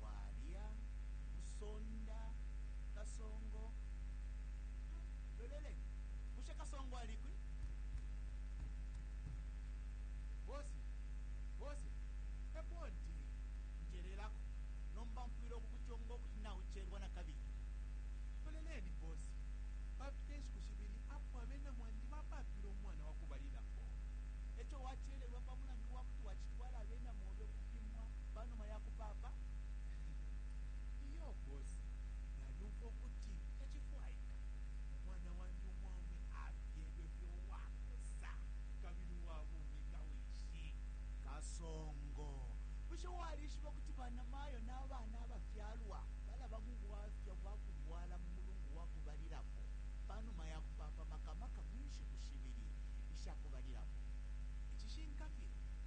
Bwalya, Musonda, Kasongo, loleleni. Bushe Kasongo alikwi? Bose, bose, epondi, njelelako. Nomba mfwile ukukuchonga ukuti nauchelwa na kabili. Loleleni, bose, papita inshiku shibili apo abena mwandi bapapile umwana wakubalilapo. Echo wachelelwa pa mulandu wakuti wachitwala abena mwandi. Ufwile ukupimwa pa numa ya kupaapa? Iyo, bosi. Nalyumfwa ukuti tacifwaika umwana wandi umwaume afyelwe fye uwakosa kabili uwa bumi nga wishi. Kasongo, bushe walishiba ukuti banamayo na bana abafyalwa balaba mu bwafya bwa kulwala mu mulungu wa kubalilapo pa numa ya kupaapa, maka maka mu nshiku shibili isha kubalilapo? Icishinka fye.